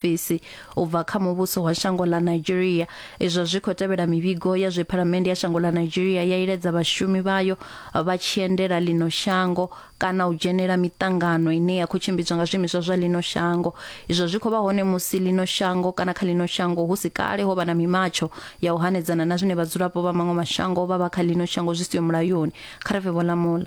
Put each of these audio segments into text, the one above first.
fhisi u bva kha muvhuso wa shango ḽa Nigeria izwo zwi khou tevhela mivhigo ya zwe phalamennde ya shango ḽa Nigeria ya iledza vhashumi vhayo vha tshiendela ḽino shango kana u dzhenela miṱangano ine ya khou tshimbidzwa nga zwiimiswa zwa ḽino shango izwo zwi khou vha hone musi ḽino shango kana kha ḽino shango hu si kale ho vha na mimatsho ya u hanedzana na zwine vhadzulapo vha maṅwe mashango vha vha kha ḽino shango zwi siho mulayoni kha re vhe vho lamula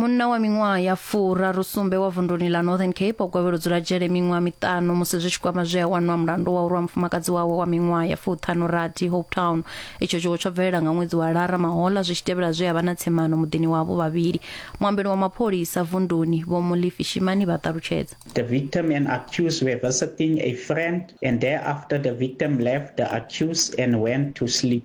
munna wa miṅwaha ya furaru sumbe wa vunduni ḽa northern cape o gwevhela u dzula dzhele miṅwaha miṱanu musi zwi tshi kwama zwe a wanwa mulandu wa u rwa mufumakadzi wawe wa miṅwaha ya fuṱhanu rathi hope town itsho tshiwo tsho bvelela nga ṅwedzi wa lara mahola zwi tshi tevhela zwe a vha na tsemano muḓini wavho vhavhili muambeli wa mapholisa vunduni vho mulifi shimani vha ṱalutshedza The victim and accused were visiting a friend, and thereafter the victim left the accused and went to sleep.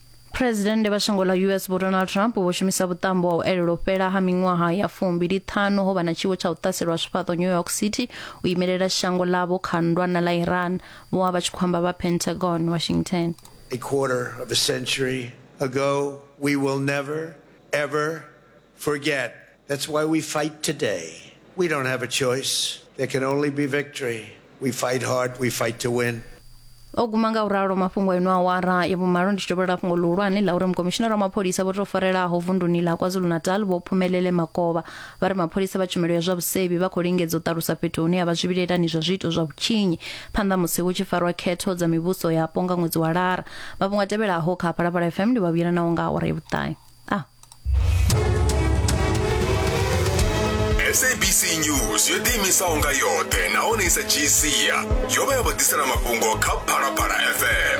phuresidennde vha shango ḽa us vho donald trump vho shumisa vhuṱambo wa u elelwa u fhela ha miṅwaha ya fumbili ṱhanu ho vha na tshiwo tsha u ṱaselwa zwifhaṱo new york city u imelela shango ḽavho kha ndwana ḽa iran vho vha vha tshi khou amba vha pentagon washington a quarter of a century ago we will never ever O guma nga u ralo mafhungo eno awara ya vhumalo ndi tshi dovholola fhungo ḽihulwane ḽa uri mukomishinara wa mapholisa vho tou farelaho vunduni ḽa KwaZulu-Natal vho Phumelele Makovha vha ri mapholisa vha tshumelo ya zwa vhusevhi vha khou lingedza u ṱalusa fhethu hune ha vha zwivhilaelani zwa zwiito zwa vhutshinyi phanḓa musi hu tshi farwa khetho dza mivhuso yapo nga ṅwedzi wa Lara. Mafhungo a tevhelaho kha Phalaphala FM ndi vha vhuyela nawo nga awara ya vhuṱahe. Ah. sabc news yo ḓiimisaho nga yoṱhe nahone i sa dzhii sia yo vha ya vha ḓisela mafhungo kha phalaphala fm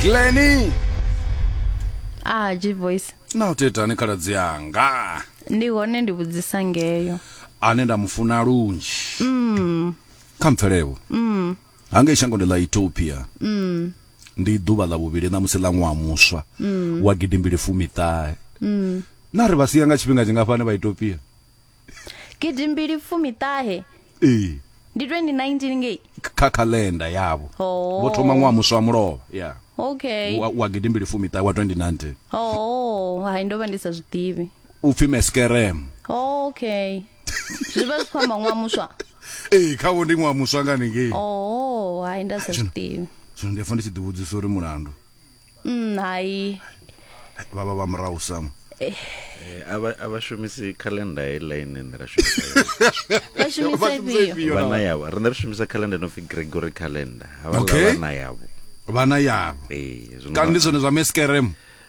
gleni ah g voice na u tetani khaladzi yanga ndi hone ndi vhudzisa ngeyo ane nda mu funa lunzhi mm. kha mpfelewo mm. hangei shangoni ḽa ethiopia mm. ndi ḓuvha ḽa vhuvhili ṋamusi ḽa ṅwaha muswa mm. wa gidimbili fumiṱahe mm. na ri vha sia nga tshifhinga tshingafhani vha ethiopia gidimbili fumiṱahe ee ndi 2019 ngei kha calendar yavho oh. vho thoma ṅwaha muswa wa mulovha yeah okay wa, wa gidimbili fumiṱahe wa 2019 oh hai ndo vha ndi sa zwi ḓivhi u pfi meskerem oh, okay zwi vha zwi khou amba ṅwaha muswa ee kha vho ndi ṅwaha muswa nga ningei oh hai nda sa zwiḓivhi zwino ndi fa ndi tshi ḓivhudzisa uri mulandu mm, hai vha vha vha murahu sam eh. Eh, a vha shumisi calendar heiḽa ine nṋe ra shumisavana yavho riṋe ri shumisa calendar no pfi gregory calendar havhaana yavho vhana yavho eh, kana ndi zwone zwa meskerem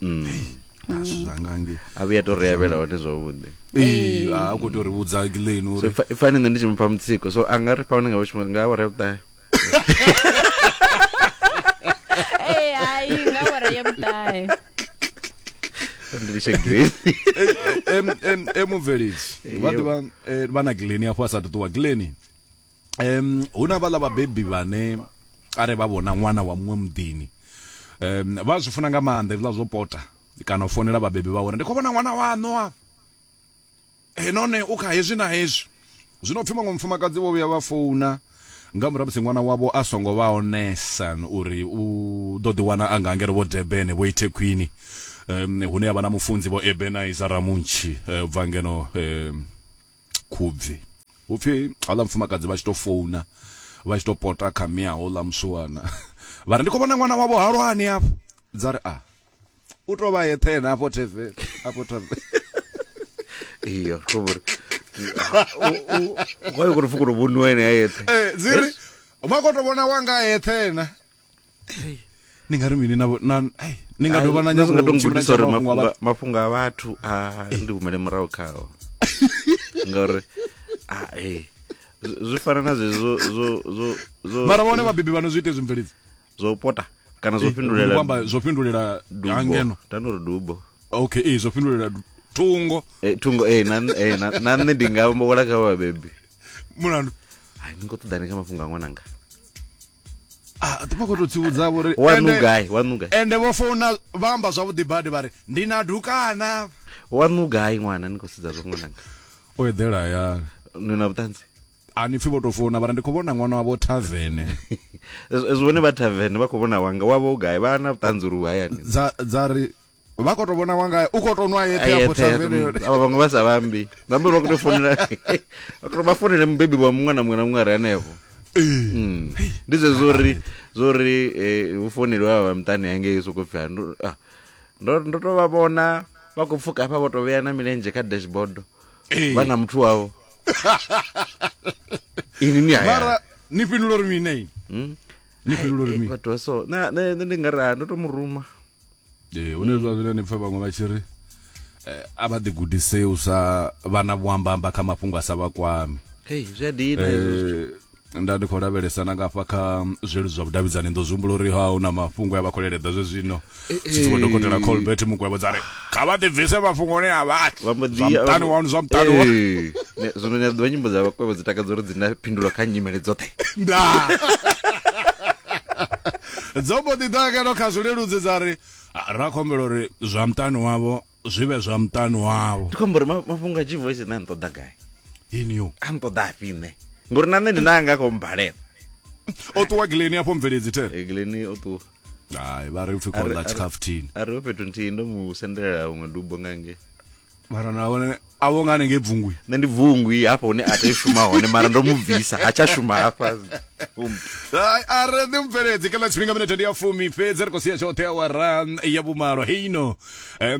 mm. mm. zvangange avuya to reyavela hone zvavhuḓi eh, a ku to ri vhudza leni uri i fani nṋe ndi tshi mupha mutsiko so a nga ri pfa unenge vhutshimo nga awara ya vhuṱahe eh, hai nga awara ya vhuṱahe ndilishe green em em em mubveledzi vha ḓivha vha na gleni afho a sa ṱuṱuwa gleni um hu na vhaḽa vhabebi vhane are vha vhona ṅwana wa muṅwe muḓini um vha zwi funa nga maanḓa hezwiḽa zwo pota kana u fonela vhabebi vha uri ndi khou vhona ṅwana waṋu afha e none u kha hezwi na hezwi zwino pfhi maṅwe mufumakadzi vho vhuya vha founa nga murahu musi ṅwana wavho a songo vha onesa uri u ḓo ḓi wana a nga ngeno vho debene vho ithe khwini um hune ya vha na mufunzi vho ebenizer ramuntshi eh, bva ngeno um Khubvi. Hu pfi houḽa mufumakadzi vha tshi tou founa vha tshi tou pota kha mme a houḽa musiwana vha ri, Ndi khou vhona ṅwana wavho Halwani hafho. Dza ri, A, u tou vha a eṱhe ene hafho thaveni, hafho thaveni. Iyo, ri khou vho ri, Hu a yo khou tou pfi u khou tou vhoniwa ene a eṱhe. Dzi ri, Vha khou tou vhona wanga a eṱhe ene. ni nga ri mini na na ai ni nga dovha na nyazo nga tongi kuti sorry mafhunga mafhunga a vhathu a ndi humele murahu khawo ngori a eh zwi fana na zwe zwo zwo zwo zwo mara vhone vhabebi vhano zwi ite zwi mvelidzi zwo pota kana zwo fhindulela kwamba zwo fhindulela hangeno tano ri dubo okay eh zwo fhindulela thungo eh thungo eh na eh na nne ndi nga mbola kha vhabebi mulandu ai ni ngo ṱoḓa ni kha mafhungo a ṅwananga ah, vha khou tou tsivhudza vho ri ende vho founa vha amba zwavhuḓi badi vha ri ndi na dukana wanu gai ṅwana ni khou sedza zwo ṅwananga o eḓela ya ni na vhuṱanzi a ni pfi vho tou founa vha ri ndi khou vhona ṅwana wavho thavene zwone vha thavene vha khou vhona wanga wavho gai vha na vhuṱanzi uri u hayani dza ri vha khou tou vhona wanga u khou tou nwa yeṱhe afho thavheneni avha vhaṅwe vha sa vhambi vhambi vha khou tou founela vha founele mubebi wa muṅwe na muṅwe na muṅwe are hanefho hmm. ndi zwe zwori zwori eh, hu founeliwa vha muṱani hangei soko pfhi ah, ndo ndo to vha vhona vha khou pfuka hafha vho to vhea na milenzhe kha dashboard vha na muthu wavho ini ni haya ni fhindula uri mini hmm? ni fhindula uri mini vhathu so na ndi nga ra ndo to muruma ee hune zwa zwino ni pfa vhaṅwe vha tshi ri eh, a vha ḓigudisei u sa vha na vhuambamba kha mafhungo a sa vha kwami hey zwi a dina hezwo zwithu Eh, nda ndi khou lavhelesa na ngafha kha zweludzi zwa vhudavhidzani ndo zwi humbula uri ha hu na mafhungo ya vha khou leledza zwe zwino tshitsiwa dokotela colbert mukwevho dza ri kha vha ḓibvise mafhungoni a vhathu vha mbo ḓi zwa muṱani wanu zwa muṱani wa Eh, ne- zwino ni a ḓivha nyimbo dza vhakwevho dzi takadza uri dzi na phindulo kha nyimele dzoṱhe ndaa dzo mbo ḓi ḓa ngeno kha zwileludzi dza ri ra khombela uri zwa muṱani wavho zwi vhe zwa muṱani wavho ndi khombo uri mafhungo a g voice nṋe nṱoḓa gai inio a nṱoḓa afhi nṋe ngori na nṋe ndi nanga kho mbalela o ṱuwa gileni afho mveledzi te eh, gileni o ṱuwa hai vha ri upfi khonla tshikhafuthini a ri o fhethu nthihi ndo mu sendelela huṅwe dubo ngange mara na vhone a vho nga hanengei bvungwi nṋe ndi bvungwi hafha hune a tea shuma hone mara ndo mu bvisa ha tsha shuma hafha a re ḓi mubveledzi kha ḽa tshifhinga minete ndi ya fumi fhedzi ri khou sia tshoṱhe awara ya vhumalo heino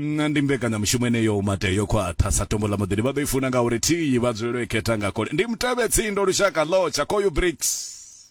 ndi mbekanyamushumo eneyo mate yo khwaṱha sa tombo ḽa muḓini vha ḓo i funa ngauri thiyi vha dzulelo i khetha nga kole ndi mutevhe tsindo lushaka ḽotsha koyu bricks